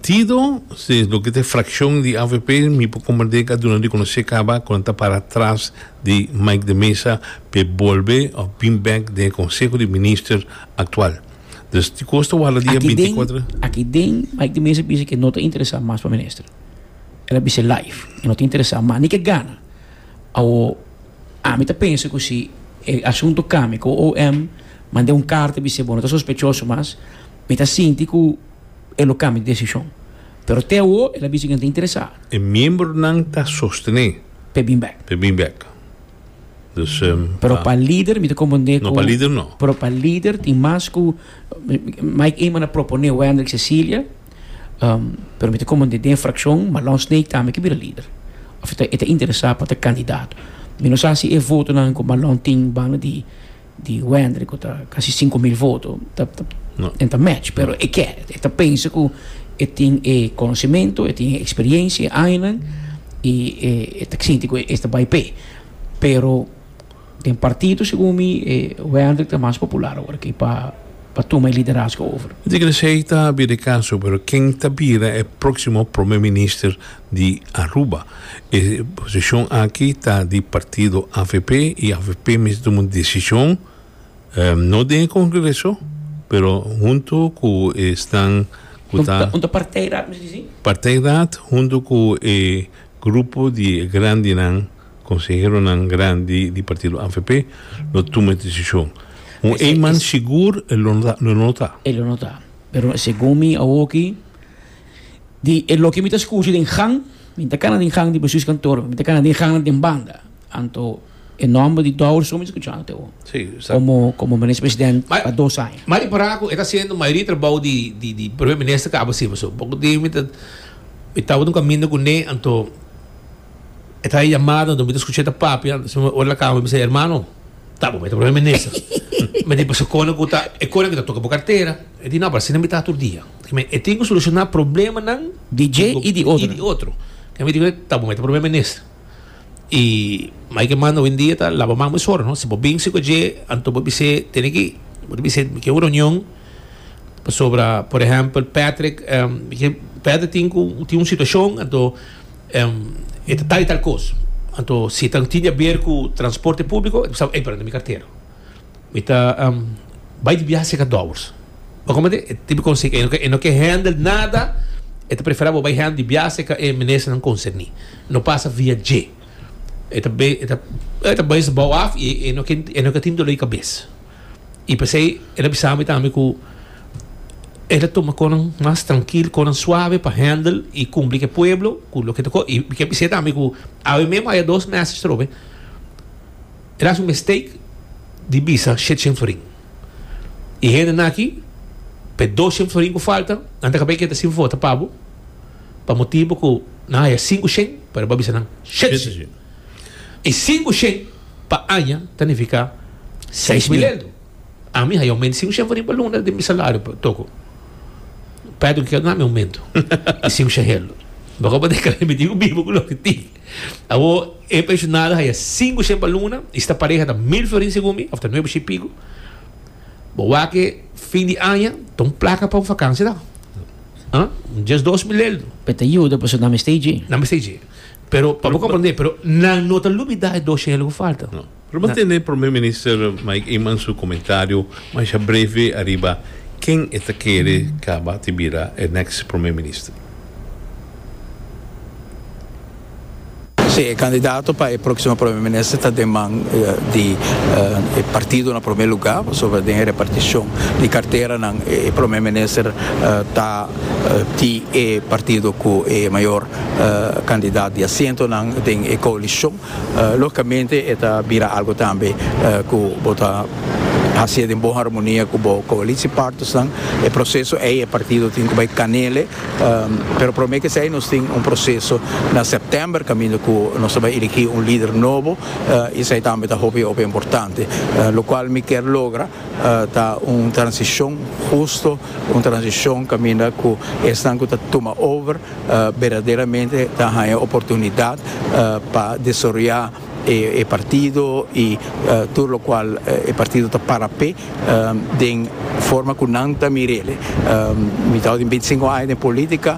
Tido si es loke ta e frakshon di avp mi por komprendé ka duna rekonosé kaba ku nan ta para tras di Mike de Meza pa e bolbe òf bin bèk den e konseho di minister aktual. Dus di kos ta warda dia binti i kuater. Aki den Mike de Meza bisa ke no ta interesá mas pa minister. El a bis'é live e no ta interesá mas ni ke gana. Awo ami ta pensa ku si e asuntu kambia ku OM mand'é un karta bis'é bo no ta sospechoso mas mi ta sinti ku. e lo kambia di desishon. Pero te awo el a bisa ku nan ta interesá. E miembronan ta sostené. P'e bin bèk. P'e bin bèk. Dus ta. Pero pa lider mi ta komprendé ku. No, pa lider no. Pero pa lider tin mas ku Mike Eman a proponé Wendrick Cecilia, pero mi ta komprendé den frakshon Malon Snake tambe ke bira lider òf e ta interesá pa ta kandidato. Mi no sa si e votonan ku Malon tin banda di. di Wendry cu ta casi cinco mil voto ta ta No. en ta match pero e ke e ta pensa cu e tin e conocimento e tin e experiencia e añanan y e e ta sinti cu e ta bay p'e pero den partido segun mi e Wendry ta mas popular awor aki pa pa tuma e liderazgo over. Mi ta kere sa ei ta bira e caso pero ken ta bira e proximo Prome Minister? di Aruba. E posishon aki ta di partido avp y avp mes duna un desishon no den e kongreso pero huntu ku esnan ku ta. Huntu partij raad mes disi? Partij raad huntu ku e grupo di e grandinan konseheronan grandi di partido avp lo tuma e desishon. Un eenman sigur e lo no ta. E lo no ta pero segun mi awoki Di e loke mi ta scuci den gang, mi ta cana den gang di bestuurskantoor, mi ta cana den gangnan den banda, anto e nomber di Douwersoon mi ta scuchando te awo, como como Minister President pa dos aña. Ma repará cu e ta haciendo mayoria di trabou di di di Primer Minister caba así pasobra poco tin mi ta mi taba ta un caminda cu ne anto e ta haci yamada anto mi ta scucha e ta papia anto siempre ora la cama mi bisa hermano ta bo bo e ta Primer Minister mi di pasa cona cu ta e cona cu ta toca bo cartera e di no pero asina mi ta tur dia. E tin ku solushoná problemanan di dje i di otro. Mi di ku ta bo mester promé minister. I mai ke mas hoendia ta laba man bo e sor no. Si bo binse ku dje anto bo bis'é tene ki bo ta bis'é mi ke un reunion pasobra por ehèmpel Patrick Patrick tin ku tin un situashon anto e ta tal i tal kos anto si tin di aber ku transporte públiko e ta bisa bo ey pero anto mi kartero. Mi ta bai di biaha seka dòbers. Bo komprende? E tipo konsey ei. E no ke hèndel nada, e ta preferá bo bai hèndel di biaha seka e ministernan konserní. No pasa via dje. E ta be, e ta, e ta bes bou af i e no ke, e no ke tin dolé kabes. I p'esei el a bisa mi tambe ku el a tuma kosnan mas trankil, kosnan suave pa hèndel i kumpli ku e pueblo ku loke ta kos. I mi ke bis'é tambe ku awe mesmu a haya dos mèses trobe. El hasi un mistake di bisa shetshen florin. E hende naki, pa e dosshen florin ku falta, nan ta kab'é keda sin vota pa bo, pa motibu ku nan haya sinku shen, pero bo a bisa nan shetshen. E sinku shen pa aña ta nifiká seis mil eldo. Ami haya oumento di sinku shen florin pa luna den mi salario pa toko. Pèt, hokier nan mi oumento di sinku shen eldo? Bo ka por deka remiti ku bibu ku loke tin. Awor, e pensionado haya sinku shen pa luna y sta pareha ta mil florin segun mi, of ta nuebe shi pico. Bo wak e fin di aña, ta un placa pa un vakansia ta. Huh? Un dies dos milel. Pe ta yuda pasobra nan mester dje. Nan mester dje. Pero pa bo comprende, pero nan no ta lubida e dos shen lo cu falta. Lo bo tene Prome Minister Mike Eman su komentario masha breve ariba ken e ta kere kaba di bira e next Prome Minister. Si, e kandidato pa e próksimo Prome Minister ta den man di e partido na prome luga, pasobra den e repartishon di karteranan e Prome Minister ta di e partido ku e mayor kandidat di asientonan den e koalishon. Lógicamente e ta bira algo tambe cu bo ta hacié den bon harmonia cu bo coalitiepartnersnan. E proceso ey e partido tin cu bay canele, pero prome que esey nos tin un proceso na september caminda cu nos ta bay eligi un lider nobo y esey tambe ta hopi hopi importante. Locual mi kier logra ta un transicion husto, un transicion caminda cu esnan cu ta tuma over berdaderamente ta haña oportunidat pa desaroyá e partido i tur lokual e partido ta para p'e den forma ku nan ta mir'e. Mi ta hor den binti sinku aña den polítika.